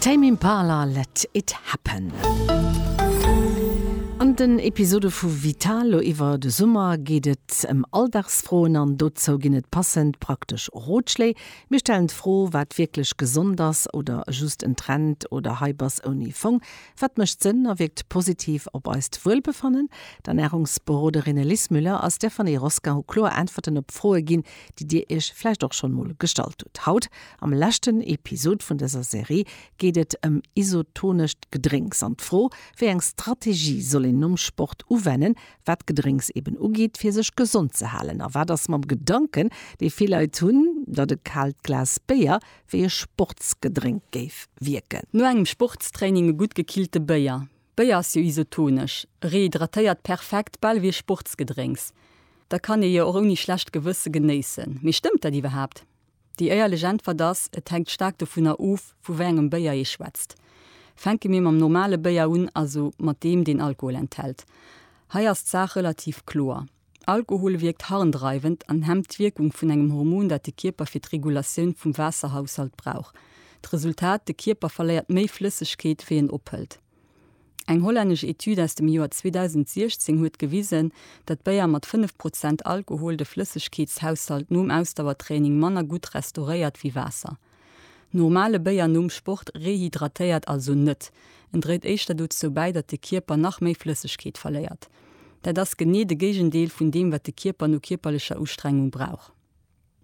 Tame Impala, Let It Happen. An den Episode vu Vital lo iwwer de Summer geet et ëm Alldagsfroen an dozou ginn et passend praktesch Rotschléi. Mir stellen d'Fro, wat wierklech gesond ass oder just en Trend oder Hype ass ouni Fong? Wat mécht Sënn a wierkt positiv op eist Wuelbefannen? D'Ernärungsberoderinne Lis Müller a Stéphanie Roskin hu kloer Äntwerten op Froe ginn, déi dir iech vläicht och schonn mol gestallt hutt. Haut Am leschten Episod vun dëser Serie geet et ëm isotonescht Gedrénks an d'Fro, wéi eng Strategie soll een nom Sport uwennen, wat Gedrénks eben ugeet, fir sech gesond ze halen. A wat ass mam Gedanken, dee vill Leit hunn, datt e kaalt Glas Béier wéi e Sportsgedrénk géif wierken? No engem Sportstraining e gutt gekillte Béier. Béier ass jo isotonesch, e rehydratéiert perfekt, bal ewéi e Sportsgedrénks. Dat kann ee jo och ouni schlecht Gewësse genéissen. Mee stëmmt dat iwwerhaapt? Déi éierlech Äntwert ass, et hänkt staark dovunner of, vu wéi engem Béier ee schwätzt. Fänke mir mam normale Béier un, also mat deem, deen Alkohol enthält. Hei ass d'Saach relativ kloer. Alkohol wierkt harndreiwend an hemmt d'Wierkung vun engem Hormon, dat de Kierper fir d'Regulatioun vum Waasserhaushalt brauch. D'Resultat, de Kierper verléiert méi Flëssegkeet, wéi en ophëlt. Eng hollännesch Etüd aus dem Joer 2016 huet gewisen, datt Béier mat 5 Prozent Alkohol de Flëssegkeetshaushalt nom Ausdauertraining manner gutt restauréiert wéi Waasser. Normale Béier nom Sport rehydratéiert also net, en dréit éischter dozou bäi, datt de Kierper nach méi Flëssegkeet verléiert. Dat ass genee de Géigendeel vun deem, wat de Kierper no kierperlecher Ustrengung brauch.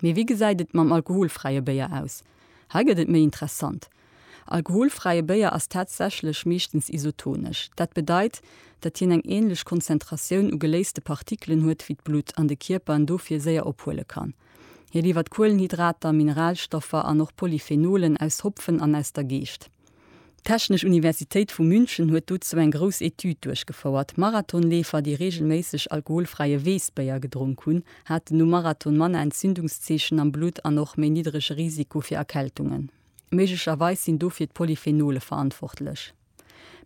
Mee wéi gesäit et mam alkoholfräie Béier aus? Hei gëtt et méi interessant. Alkoholfräie Béier ass tatsächlech meeschtens isotonesch. Dat bedeit, datt hien eng änlech Konzentratioun u geléiste Partikelen huet wéi d'Blutt an de Kierper en dofir séier ophuele kann. Hie liwwert Kuelenhydrater, Mineralstoffer an och Polyphenolen aus Hopfen an aus der Geescht. D'Technesch Universitéit vu München huet dozou eng grouss Etüd duerchgefouert. Marathonleefer, déi reegelméisseg alkoholfräie Weessbéier gedronk hunn, haten nom Marathon manner Entzündungszeechen am Blutt an och méi niddrege Risiko fir Erkältungen. Méiglecherweis sinn dofir d'Polyphenole verantwortlech.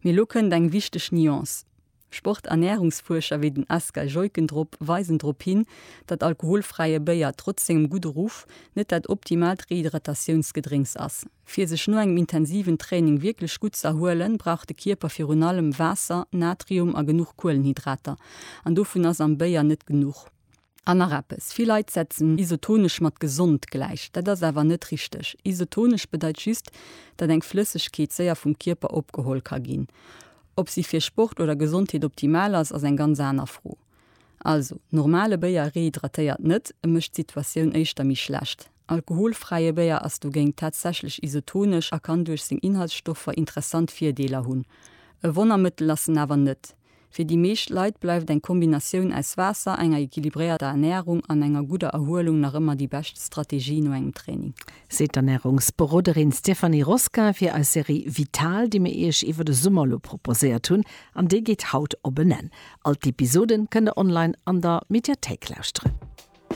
Mee elo kënnt eng wichteg Nuance, Sporternärungsfuerscher wéi den Asger Jeuckendrop weisen drop hin, datt alkoholfräie Béier trotz sengem gudde Ruff net dat optimaalt Rehydratatiounsgedrénks ass. Fir sech no engem intensiven Training wierklech gutt z'erhuelen, brauch de Kierper virun allem Waasser, Natrium a genuch Kuelenhydrater. An dovun ass am Béier net genuch. An nach eppes, vill Leit setzen isotonesch mat gesond gläich. Dat ass awer net richteg. Isotonesch bedeit just, datt eng Flëssegkeet séier vum Kierper opgeholl ka ginn. Ob si fir Sport oder Gesondheet optimal ass, ass eng ganz aner Fro. Also, normale Béier rehydratéiert net, e mécht d'Situatioun éischter méi schlecht. Alkoholfräie Béier ass dogéint tatsächlech isotonesch a kann duerch seng Inhaltsstoffer interessant Virdeeler hunn. E Wonnermëttel ass en awer net. Fir déi meescht Leit bleift eng Kombinatioun aus Waasser, enger equilibréierter Ernärung an enger gudder Erhuelung nach ëmmer déi bescht Strategie no engem Training. Seet d'Ernärungsberoderin Stéphanie Rosquin fir eis Serie Vital, déi mir Iech iwwer de Summer elo proposéiert hunn. An déi geet haut op en Enn. All d'Episoden kënnt der online an der Mediathéik lauschteren.